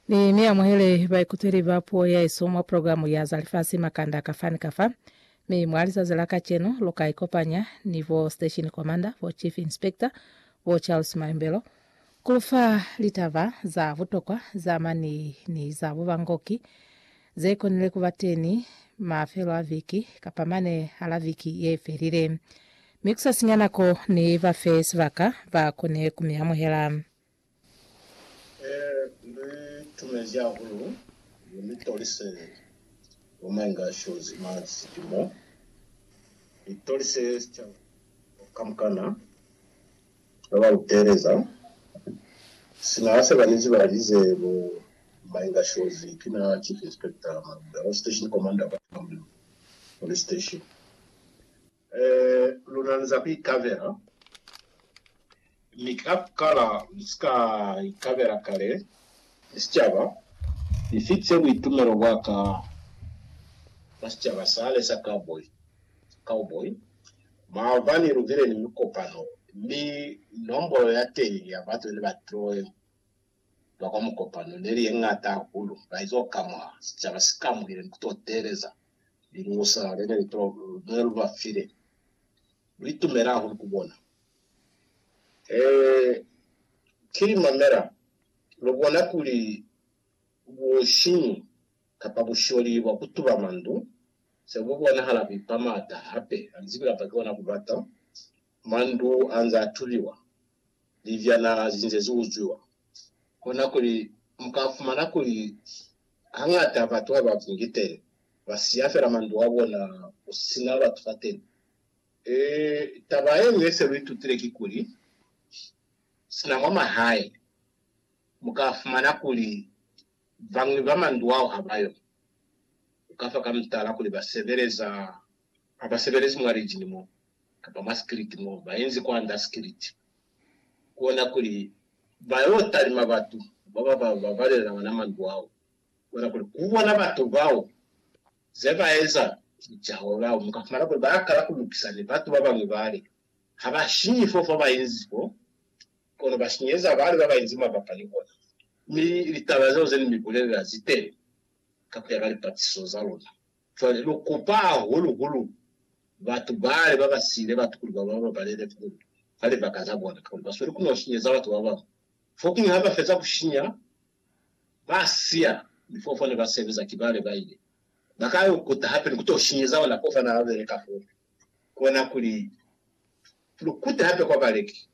Ni mi amuhele baikutweli ba puo yaesu mwa programu ya za lifasi makanda kafa ni kafa. Mi mwa lizazi la kacenu lu ka ikopanya ni bo Station Commander, bo Chief Inspector, bo Charles Mayombelo ku lu fa litaba za butokwa za mani ni za bubangoki ze konile ku ba teni mafelo a viki kapa mane hala viki ye felile. Mi ku sa sinya nako, ni ba fe sibaka ba kone ku mi amuhela. Li tumezi hahulu kuli ni tolise bo Mainga Shozi mwa Silimo. Li tolise sicaba kamukana ha ba lu teeleza. Sina ha se ba ni ziba haize bo Mainga Shozi ki na Chief Inspector Maluda, ba Station Commander kwa Tumamulilo Police Station. Ee, luna ni za ku ikabela, mi ka ku kala lu si ka ikabela kale ni sicaba. Ni fitise buitumelo bwa ka mwa sicaba sale sa cowboy, cowboy, maobani lu bile ni mikopano, mi nombolo ya teñi ya batu ne ba troe. ba kwa mukopano ne li ye ñata hahulu, ba izo ka mwa sicaba si kamuhile ni ku to teeleza liñusa le ne lu ba file. Lu itumela hahulu ku bona. Ee, ki li mamela. Lu bona kuli busiñi kapa busholi bwa ku tuba mandu se bu bonahala ku ipa mata hape, ha ni zibi kapa ki ona ku bata. Mandu anze a tubiwa, libyana zinze zi uzwiwa. Kona kuli mu ka fumana kuli hañata batu ha ba bungi teni, ba siya fela mandu a bona ku si na batu fateni. Ee, taba ye ñwi ye se lu itutile kikuli, sina mwa mahae mu ka fumana kuli bañwi ba mandu ao ha ba yo. Ku ka fa ka mutala kuli ba sebeleza, ha ba sebelezi mwa lijini mo. kapa mwa sikiliti mo ba inzi kwand'a sikiliti, ku ona kuli ba y'o talima batu ba ba ba babalela ona mandu ao, ku ona kuli ku bona batu bao ze ba eza ki Jehova. Mu ka fumana kuli ba kala ku lukisa ni batu ba bañwi bale ha ba sinyi fo fa ba inzi fo, kono ba sinyeza bale ba ba inzi mabapa ni ona. Mi litaba zeo ze ni mi bulelela zi teñi ka ku ya ka lipatiso za luna. Cwale lu kupa hahulu-hulu batu bale ba ba siile batukulu ba bona ba ba lele f'o fa libaka za bona, kakuli ba sweli ku n'o shinyeza batu ba bañwi. Fokuñwi ha ba feza ku shinya, ba siya lif'o fo ne ba sebeza, ki bale ba ile ba ka yo kuta hape ni ku t'o shinyeza ona f'o fa n'a beleka f'one. Kona kuli lu kute hape kwa baleki.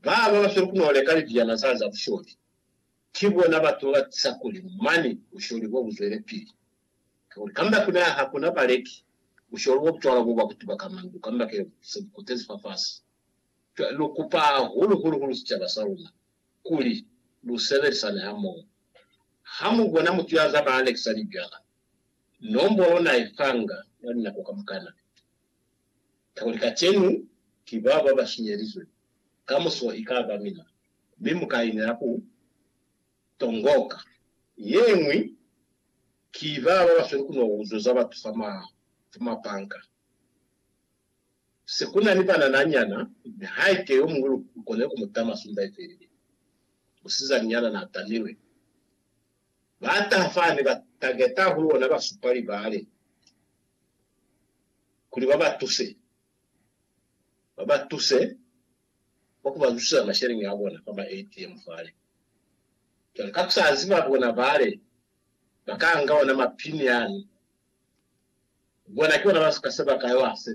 Ba ba ba sweli ku n'o leka libiana zale za busholi, ki bona batu ba ba tisa kuli mane busholi bo bu zwelepili. Kakuli kamba kuna ha kuna baleki busholu bo bucwalo bo bwa kutuba ka mandu kamba ke se bu kotezi fafasi. Cwale lu kupa hahulu hulu hulu sicaba sa luna kuli lu sebelisane hamoho. Ha mu bona mutu ya zaba alekisa lijwala, nombolo na i fanga mwa linako kamukana. Kakuli kacenu ki bao ba ba shinyelizwe, kamuso i ka ba mina, mi mu ka inela ku. Tongoka yeñwi ki ba ba basweli ku no uzuza batu fa mabanka. Se ku na ni banana nyana, mi haike yo muñwi lu konile ku mu tama sumba ye felile. Musizani nyana na tamilwe. Ba taha fani, ba tangeta hahulu bona ba supa libale kuli ba ba tuse. Ba ba tuse. kwa ku ba zusiseza masheleñi a bona fa ma ATM fale. Cwale ka ku sa ziba bona bale ba ka nga ona ma pin yani, bona ki bona ba ka se ba ka yo a sebeleza.